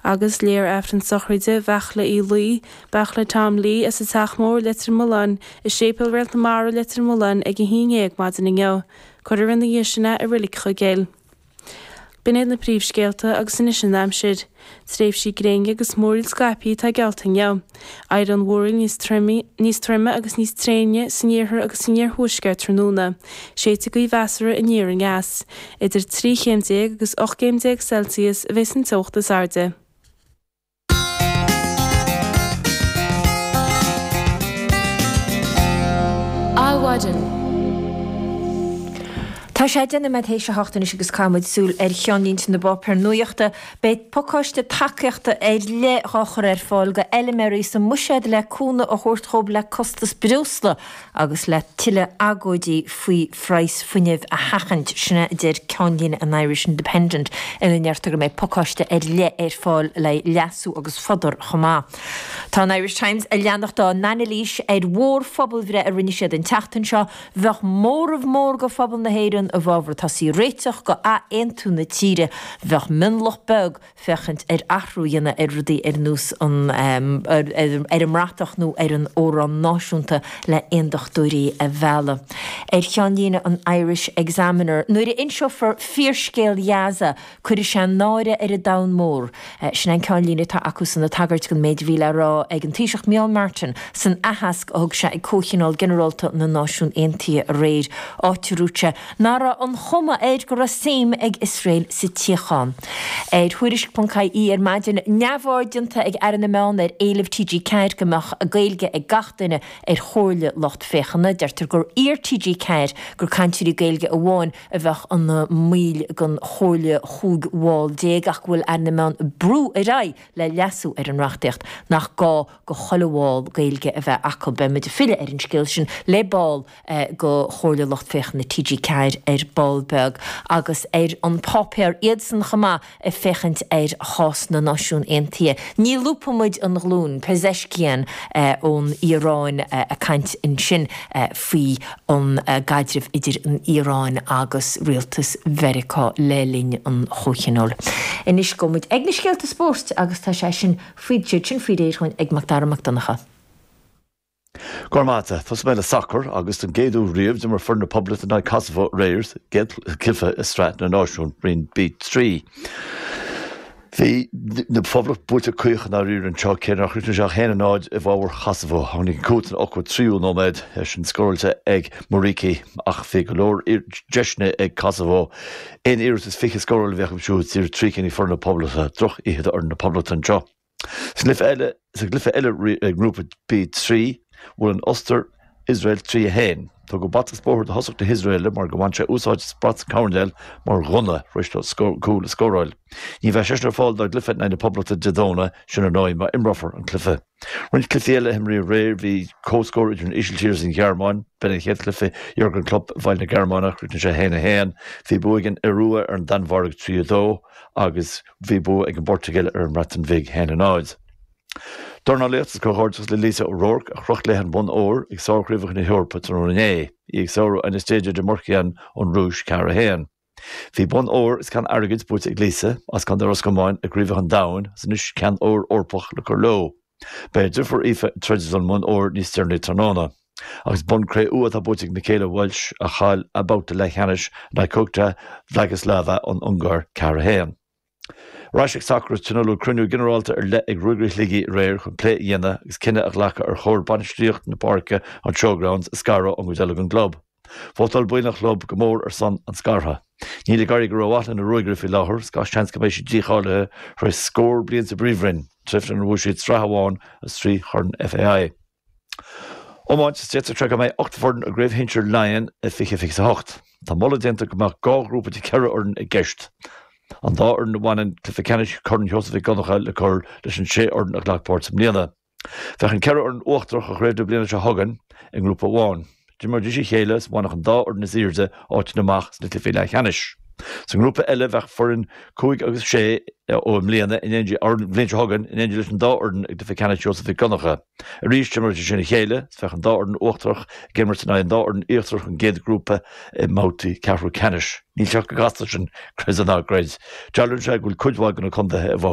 agus léifear Aifreann sochraide Bheachla Uí Laoi, Beachla Tom Lee, as an Teach Mór, Leitir Mealláin, i Séipéal Réalt na Mara, Leitir Mealláin, ag a haon déag maidin inniu. Cuirfear ina dhiaidh sin é i Reilig Chuigéil. B'in iad na príomhscéalta, agus anois an aimsir. Tréimhsí gréine agus múraíl scaipthe atá geallta inniu. Éireoidh an mhúraíl níos troime, níos troime agus níos tréine san iarthar agus san iarthuaisceart tráthnóna, séidfidh gaoth mheasartha aniar aneas. Idir trí chéim déag agus ocht gcéim déag Celsius a bheas an teocht is airde. Adhmhaidin. Tá sé deich nóiméad théis a hocht anois agus caithfidh muid súil ar cheannlínte na bpáipéar nuachta Beidh pacáiste tacaíochta ar leith dhá chur ar fáil go fheiliméaraí sa mbuiséad le cúnamh a thabhairt dhóibh le costas breosla agus le tuilleadh agóidí faoi phraghas fuinnimh a sheachaint. Sin a deir ceannlíne an Irish Independent ina ndeirtear go mbeidh pacáiste ar leith ar fáil le leasú agus fodar chomh maith. Tá an Irish Times a leanacht dá n-ainilís ar mhór phobalbhreith a rinne siad an tseachtain seo, Bheadh móramh mór de phobal na hÉireann i bhfabhar tosaí ag réiteach go athaontú na tíre. Bheadh mionlach beag ag féachaint ar athrú a dhéanamh ar rudaí ar nós an ar an mbratach nó ar an amhrán náisiúnta le aondachtóirí a mhealladh. Ar cheannlíne an Irish Examiner nuair a inseofar fíorscéal Ghaza, Cuirfidh sé náire ar an domhan mór. Sin é an ceannlíne atá acusan ag tagairt don méid a bhí le rá ag an Taoiseach Micheál Martin san aitheasc a thug sé ag Comhthionól Ginearálta na Náisiún Aontaithe aréir, áit a dúirt sé nach raibh an chuma air go raibh suim ag Iosrael sa tsíocháin. Ar Thuairisc.ie ar maidin, neamhaird déanta ag Aire na Meán ar éileamh TG4 go mbeadh Gaeilge ag gach duine ar chomhairle lucht féachana. Deirtear gur iarr TG4 gur cainteoirí Gaeilge amháin a bheadh ina mbaill den chomhairle chúig bhall déag ach go bhfuil Aire na Meán ag brú ar aghaidh le leasú ar an reachtaíocht nach gá do chuile bhall Gaeilge a bheith acu. Beidh muid ag filleadh ar an scéal sin le ball de Chomhairle Lucht Féachana TG4 ar ball beag agus ar An Páipéar, iadsan chomh maith, ag féachaint ar chás na Náisiún Aontaithe, ní lúbfaidh muid an ghlúin, Pezeshkian ón Iaráin ag caint ansin faoi an gcaidreamh idir an Iaráin agus rialtas Mheiriceá le linn an chomhthionóil. Anois gabhfaidh muid ag na scéalta spóirt agus tá sé sin faoi réir dhúinn ag Macdara Mac Donncha. Go raibh maith agat. Tosóidh mé le sacar agus don gcéad uair riamh d'imir foireann na Poblachta in aghaidh Kosovo aréir sa gcéad chluiche i Sraith na Náisiún, Roinn B3. Bhí an Phoblacht buailte caoch i ndáiríre anseo, cé nár chríochnaigh sé ach 1 0 i bhfabhar Kosovo. Tháinig an cúl san 83ú nóiméad, é sin scóráilte ag Muriqi, ach bhí go leor deiseanna ag Kosovo. Aon iarracht is fiche scórála a bhí acu siúd, díreach trí cinn ag foireann na Poblachta. Droch oíche do fhoireann na Poblachta anseo. Sa gcluiche eile i nGrúpa B, trí, bhuail an Ostair Iosrael, 3, 1. Tugadh bata is bóthar do thosach na hIosraelaigh mar gur bhain sé úsáid as brat coirnéil mar ghunna tar éis dó cúl a scóráil. Ní bheidh seisean ar fáil dá gcluiche in aghaidh na Poblachta Dé Domhnaigh sin ar ndóigh, má imreofar an cluiche. Roinnt cluichí eile a himríodh aréir, bhí comhscór idir an Ísiltír is an Ghearmáin. B'in an chéad chluiche Jurgen Klopp i bhfeighil na Gearmáine ach chríochnaigh sé 1, 1. Bhí bua ag an Iorua ar an Danmhairg, 3, 2, agus. Bhí bua ag an bPortaingéil ar an mBreatain Bhig, 1, 0. Dornálaíocht Is comhghairdeachas le Lisa O'Rourke a chroch leith an bonn óir ag Sárchraobhacha na hEorpa tráthnóna inné, í ag sárú Anastasia Demurchian ón Rúis, 4 1. Bhí bonn óir is ceann airgid buaite ag Lisa, as Contae Ros Comáin, i gCraobhacha an Domhain agus anois ceann óir Eorpach le cur leo. Beidh a deirfiúr Aoife ag troid don mbonn óir níos deireanaí tráthnóna. Agus bonn cré-umha atá buaite ag Michaela Walsh, a chaill a babhta leathcheannais in aghaidh Kukhta Vladislava ón Ungáir, ceathair, a haon. Ar ais ag sacar is tionóladh cruinniú ginearálta ar leith ag Ruagairí Shligigh aréir chun plé a dhéanamh agus cinneadh a ghlacadh ar chóir bainistíocht na páirce, an Showgrounds, a scaradh ón gcuid eile den gclub. Vótáil baill an chlub go mór ar son an scartha. Níl ag éirí go rómhaith leis na Ruagairí faoi láthair, agus gach seans go mbeidh siad dícháilithe tar éis scór bliain sa bPríomhroinn, tréimhse inar bhuaigh siad sraith amháin is trí Chorn FAI. Iomáint Is deirtear go mbeidh ocht bhfoireann i gCraobh Shinsir Laighean i 2028. Tá moladh déanta go mbeadh dhá ghrúpa de cheithre fhoireann i gceist, an dá fhoireann a bhaineann cluiche ceannais Chorn Sheosaimh Mhic Dhonncha le cur leis an sé fhoireann a ghlac páirt i mbliana. Bheadh an ceithre fhoireann uachtarach ó chraobh na bliana seo chugainn i ngrúpa amháin. D'imreoidís a chéile is bhainfeadh an dá fhoireann is airde áiteanna amach sna cluichí leathcheannais. Sa ngrúpa eile bheadh foireann 5 agus 6 ó i mbliana in éindí or an bhliain seo chugainn in éindí leis an dá fhoireann i gcluiche ceannais Sheosaimh Mhic Dhonncha. Arís d'imreoidís sin a chéile is bheadh an dá fhoireann uachtarach ag imirt in aghaidh an dá fhoireann íochtarach ón gcéad grúpa i mbabhtaí ceathrú ceannais. Níl sé chomh casta sin, creid é ná creid. Dealraíonn sé go bhfuil cuid mhaith de na contaetha i.